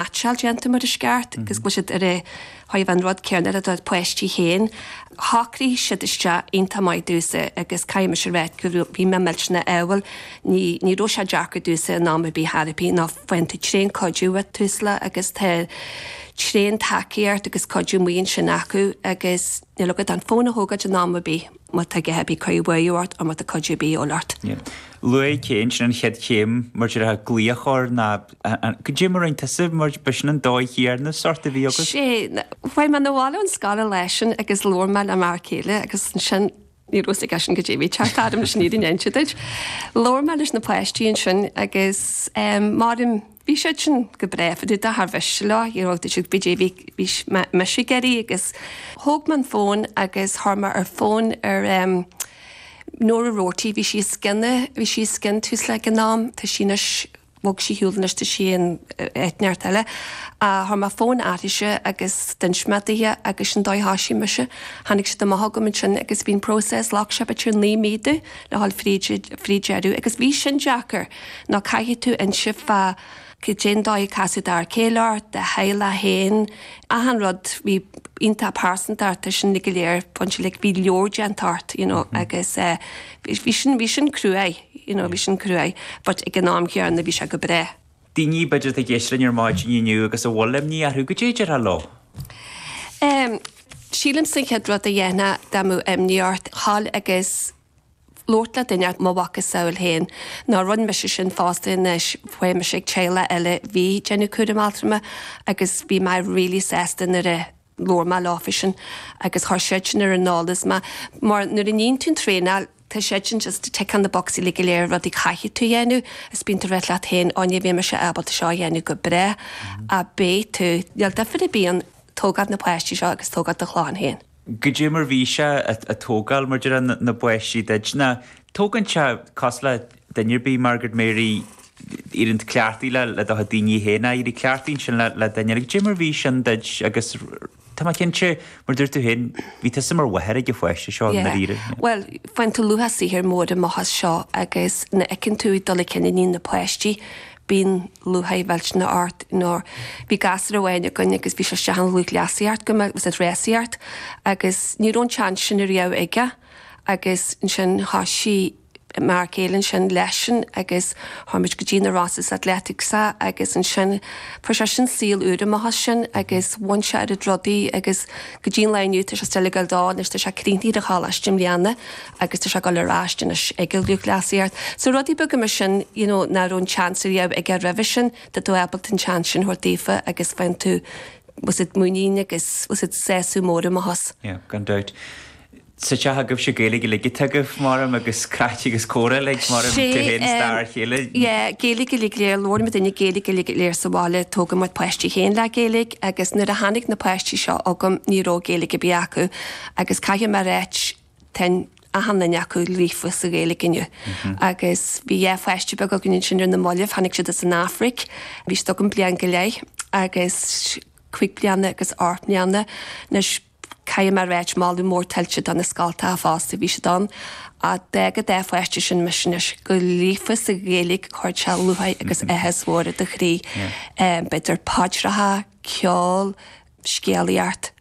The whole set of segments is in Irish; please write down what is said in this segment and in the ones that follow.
meaitseáil déanta mar is ceart agus go bhfuil siad ar a thaobh an rud céarna le do pháistí féin. Shocraigh siad isteach iontach maith i dtús agus caithfidh mise a rá go raibh, bhí mé millteanach ádhúil ní, ní raibh sé deacair i dtús in am ar bith therapy ná faigheann tú tréan cuidiú ag Tusla agus tá tréan tacaíocht agus cuidiú maith ansin acu agus níl agat ach an fón a thógáilt in am ar bith má tá a dhath ar bith ag cur buartha ort or má tá cuidiú ar bith a dhíobháil ort. Luaigh Kate ansin an chéad chéim mar a déarfá glaoch ar na. An cuma orainn? Tá suim ort, b'shin an dóigh thiarnas sort a bhí agat? Sea. Tháinig mé na bhaile ón scoil leis sin agus labhair mé le m'fhear céile agus ansin, ní raibh a fhios ag eisean goidé a bhí ag teacht agam leis an fhírinne a inse duit. Labhair mé leis na páistí ansin agus em, mar a deirim, bhí siad sin go breá, bhí dada char mhiste leo, you know, bhí siad goidé a bhí, bhí mise ag iarraidh agus thóg mé an fón agus chuir mé ar fón ar em Nora Roarty, bhí sí os cionn, bhí sí os cionn Tusla ag an am, tá sí anois, bhog sí ar shiúl anois tá sí in áit inteacht eile chuir mé fón uirthise agus d'inis mé daoithe agus sin an dóigh a thoisigh mise tháinig siad amach chugam ansin agus bhí'n process ghlac sé b'fhéidir naoi mí do le ghabháil fríd fríd deireadh agus bhí sin deacair ná caithfidh tú inse fá cé cén dóigh a casadh d'fhear céile ort do theaghlach féin achan rud bhí iontach pearsanta ort tá sin uilig go léir pointe like bhí leabhar déanta ort you know agus eh bhí sin, bhí sin cruaidh, you know, bhí sin cruaidh but ag an am chéanna bhí sé go breá. daoine b'fhéidir atá ag éisteacht linn ar maidin inniu agus a bhfuil imní orthu, goidé a déarfá leo? Em, sílimse an chéad rud a dhéanfá dá mbeadh imní ort, a ghabháil agus labhairt le duine, mo mhacasamhail féin, ná rinne mise sin fosta anois, bhí mise ag teaghlach eile bhí ag déanamh cúram altrama agus bhí mé really sásta nuair a, labhair mé leofa sin agus chuir siadsan ar an eolas mé mar nuair a níonn tú an traenáil tá siadsan just ticking na bocsaí uilig go léir rudaí a chaithfidh tú a dhéanamh is bíonn tú ag ráit leat féin ó ní bheidh mise ábalta seo a dhéanamh go brách ach beidh tú níl duifear ar bith ann tógáil na páistí seo agus tógáil do chlann féin. goidé mar bhí sé ag tógáil mar a déarfá na bpáistí duit ná tógann sé cosúil le duine ar bith, Margaret Mary, éiríonn tú cleachtaithe le do chuid daoine féin ag éirí cleachtaithe ansin le le duine eile, goidé mar bhí sin duit agus tá mé cinnte, mar dúirt tú féin, bhí tusa mar mháthair ag an pháiste seo i ndáiríre. Yeah. Bhuel, bhain tú luach saothair mhór amach as seo agus nuair a fheiceann tú an dul chun cinn a ní na páistí, bíonn lúcháir mhillteanach ort, you know. Bhí gasúr amháin againn agus bhí sé isteach i lúthchleasaíocht go minic, was it rásaíocht, agus ní raibh an tseans sin ariamh aige agus ansin thosaigh, mar gheall ansin leisean agus chuaigh muid go dtí na Rosses Athletics agus ansin fuair seisean saol úr amach as sin agus bhain sé oiread rudaí agus go dtí an lá inniu tá sé still ag dul anois tá sé críochnaithe ar a choláiste i mbliana agus tá sé ag dul ar ais anois ag lúthchleasaíocht so rudaí beaga mar sin you know nach raibh an chance a bhí aige roimhe sin tá tú ábalta an chance sin a thabhairt daofa agus faigheann tú oiread muinín agus oiread sásamh mór amach as. Yeah gan dabht. Sa teach agaibhse Gaeilge uilig atá agaibh, mairim, agus craic agus comhrá uilig, mairim, Sé, tigh féin star a chéile. yeah, Gaeilge uilig go léir, labhrann muidinne Gaeilge uilig go léir sa bhaile, tógadh mo pháistí féin le Gaeilge, agus nuair a tháinig na páistí seo chugam ní raibh Gaeilge ar bith acu, agus caithfidh mé a ráit, tá achan duine acu líofa sa Ghaeilge inniu. Agus bhí dhá pháiste beag againn ansin ar na mallaibh, tháinig siad as an Afraic, bhí siad agam bliain go leith, agus cuig bliana agus ocht mbliana, anois, Caithfidh mé a ráit, moladh mór tuillte do na scoltacha fosta, bhí siad ann a d'fhág an dá pháiste sin mise anois go líofa sa Ghaeilge chuirfeadh sé lúcháir agus áthas mór i do chroí, b'fhéidir paidreacha, ceol, scéalaíocht,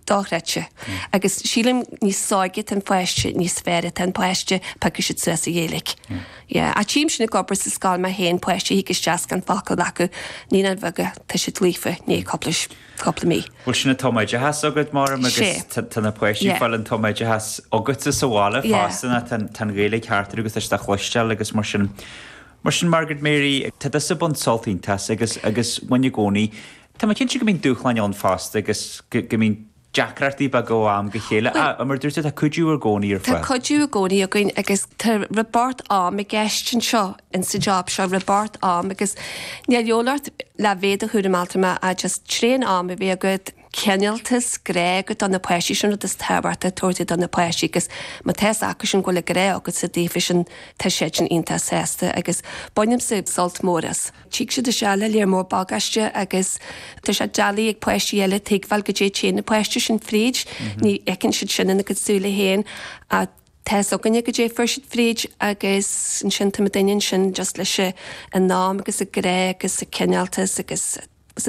dochreidte. Agus sílim níos óige atá an páiste, níos fearr atá an páiste, piocfaidh siad suas an Ghaeilge. Tchím sin ag obair sa scoil mé féin, páistí a thig isteach gan focal acu, naíonáin bheaga, tá siad líofa, i ndiaidh cúpla. cúpla mí. Bhuel sin an tumoideachas agat, Máire, agus tá na páistí ag fáil an tumoideachas agatsa sa bhaile fosta, nó tá an Ghaeilge thart orthu agus tá sé le cloisteáil agus mar sin. Mar sin, Margaret Mary, tá tusa ag baint sult iontach as agus bhain i gcónaí. Tá mé cinnte go mbíonn dúshláin ann fosta agus go mbíonn deacrachtaí beaga ó am go chéile ach mar a dúirt tú, tá cuidiú i gcónaí ar fáil. Tá cuidiú i gcónaí againn agus tá rabharta am i gceist anseo in sa job seo rabharta am agus níl a dhíobháil ort le bheith i do chúram altrama ach just tréan am a bheith agat. cineáltas, grá agat do na páistí sin an rud is tábhachtaí a thabhairt do do na páistí agus má tá fhios acu sin go bhfuil an grá agatsa daofasan tá siadsan iontach sásta agus bainimse sult mór as. Tig siad isteach le lear mór bagáiste agus tá sé doiligh ag páistí eile tuigbheáil caidé a théann na páistí sin fríd ní fheiceann siad sin ina gcuid súile féin ach Tá fhios againne caidé a chuaigh siad fríd agus ansin tá muidinne ansin just leis an am agus an grá agus an cineáltas agus is